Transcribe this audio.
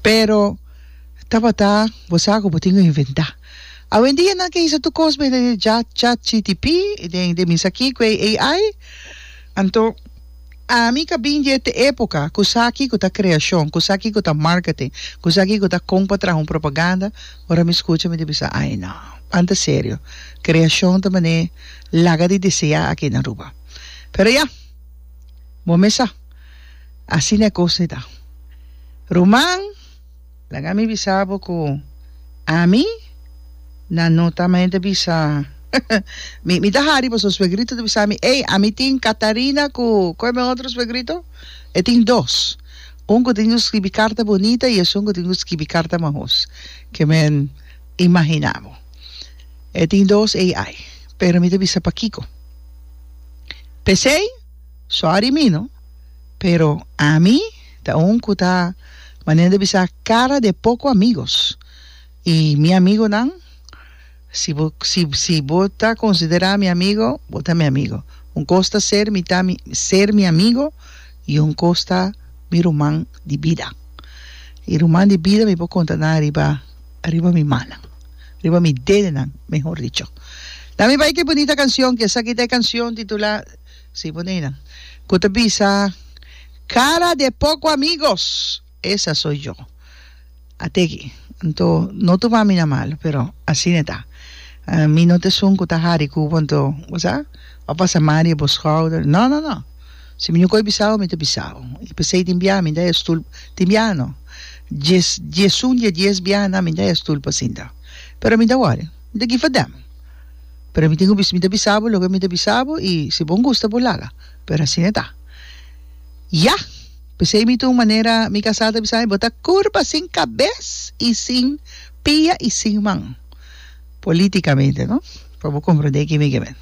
Pero, tabata bo sa ku bo tin ku inventá. Awendia nan ke hisa tur kos mester den chat chatgtp i den den misaki ku e AI. Anto, ami ka bin di e epoka ku sa kiko ta kreashon, ku sa kiko ta marketing, ku sa kiko ta kon pa traha un propaganda. Ora mi skucha mi ta bisa, ai no, banta serio. Kreashon ta manera laga di deseá aki na Aruba. Pero ya, bo mes sa. Asina e kos e ta. Ruman, laga mi bisa bo ku ami nan no ta mente bisa mi mi ta hari boso suegrito ta bisa mi ey ami tin Katarina ku kue mi otro suegrito e tin dos un ku tin ku skibi karta bunita i esun ku tin ku skibi karta mahos ke men imahina bo e tin dos ey ai pero mi ta bisa pakiko p'esei. Sorry mi no, pero ami ta un cu ta manera di bisa cara de poco amigos y mi amigonan si bo si si bo ta considera mi amigo bo ta mi amigo un cos ta ser mi ta mi ser mi amigo y un cos ta mi ruman di bida y ruman di bida mi por conta nan ariba ariba mi mannan ariba mi dedenan mehor dicho dame bay ki bunita cancion ki esaki ta e cancion titula. Sí, bo Nina, cu ta bisa, Cara de poco amigos, esa soy yo. A teki. Anto, no tuma mi na malo, pero asina e ta. Mi no ta esun cu ta hari cu bo, anto, bo sa, bo pasa mari e bo schouder. No, no, no. Si mi no koi bisa bo, mi ta bisa bo. I pesey tin biaha mi ta e stoel, tin biaha no, dies, diesun di e dies biaha nan mi ta e stoel pa sinta. Pero mi ta wori. Mi ta gifa dem. Pero mi tin ku bisa mi ta bisa bo loke mi ta bisa bo i si bon gusta bo laga. Pero asina e ta. Ya! P'esei mi ta un manera mi kasá ta bisa mi bo ta kurba sin kabes i sin pia i sin man. Polítikamente, no? Pa bo komprondé kimekemente.